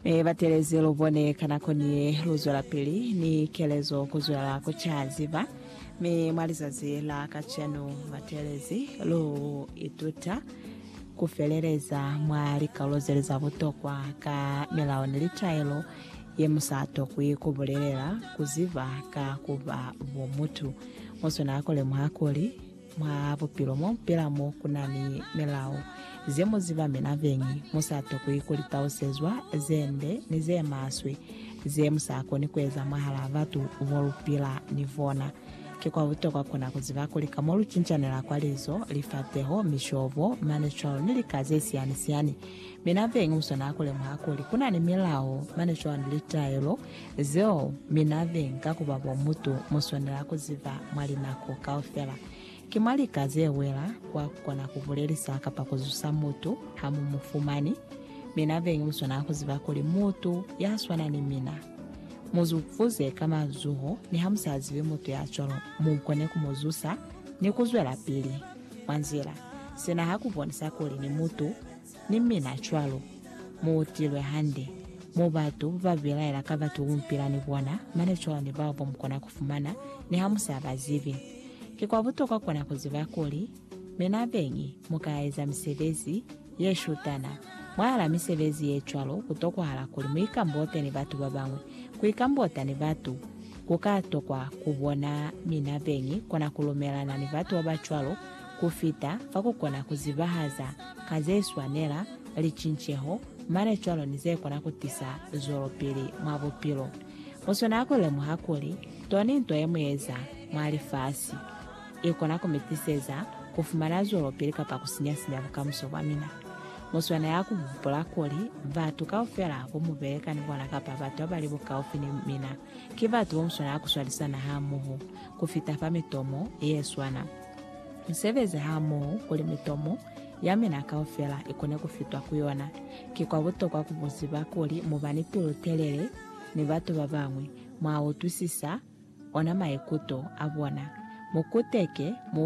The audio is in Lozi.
Mi batelezi lu bone ka nako ni ye lu zwelapili ni kelezo ku zwelela ku caziba. Mi mwa lizazi la kacenu, batelezi lu ituta ku feleleza mwa likalolo zeli za butokwa ka milao ni litaelo ye mu sa tokwi ku bulelela ku ziba ka ku ba bo mutu. Muswena ku lemuha kuli, Mwa bupilo mo pela mo ku na ni milao ze mu ziba mi na beñi mu sa tokwi ku litausezwa ze nde ni ze maswe ze mu sa koni ku eza mwahal'a batu bo lu pila ni bona. Ki kwa butokwa ku na ku ziba kuli ka mo lu cincanela kwa lizo, lifapeho, mishobo, manicwalo ni lika ze siyani-siyani, mi na beñi mu swanela ku lemuha kuli ku na ni milao, manicwalo ni litaelo Zeo mi na ve nga ku ba bo mutu mu swanela ku ziba mwa linako kaufela. Ki mwa lika ze wela kwa ku kona ku bulelisa kapa ku zusa mutu ha mu mu fumani. Mi na ve lu swanela ku ziba kuli mutu ya swana ni mina. Mu zu fuze ka mazuho niha mu sa zibi mutu ya cwalo mu kone ku mu zusa ni ku zwelapili mwa nzila. Sina ha ku bonisa kuli ni mutu. Ni mina cwalo. Mu utilwe hande. Mo batu ba bilaela ka batu ku mpila ni bona, mane cwalo ni bao bo mu kona ku fumana, ni ha mu sa ba zibi. Ki kwa butokwa kona ku ziba kuli, Mina beñi, mu ka eza misebezi ye shutana. Mwahala misebezi ye cwalo, ku tokwahala kuli mu ikambote ni batu ba bañwi. Ku ikambota ni batu, ku ka tokwa ku bona mina beñi kona ku lumelana ni batu ba ba cwalo, ku fita fa ku kona ku zibahaza ka ze swanela licinceho mane cwalo ni ze kona ku tisa zwelopili mwa bupilo. Mu swanela ku lemuha kuli to ni nto ye mu eza mwa lifasi i kona ku mi tiseza ku fumana zwelopili kapa ku sinya-sinya bukamuso bwa mina. Mu swanela ku hupula kuli batu kaufela bo mu beleka ni bona kapa batu ba ba li bukaufi ni mina ki batu bo mu swanela ku swalisana hamoho ku fita fa mitomo ye swana. Mu sebeze hamoho kuli mitomo ya mina kaufela i kone ku fitwa ku yona. Ki kwa butokwa ku bu ziba kuli mu ba ni pilu-telele ni batu ba bañwi, mwa utwisisa ona maikuto a bona, mu kuteke, mu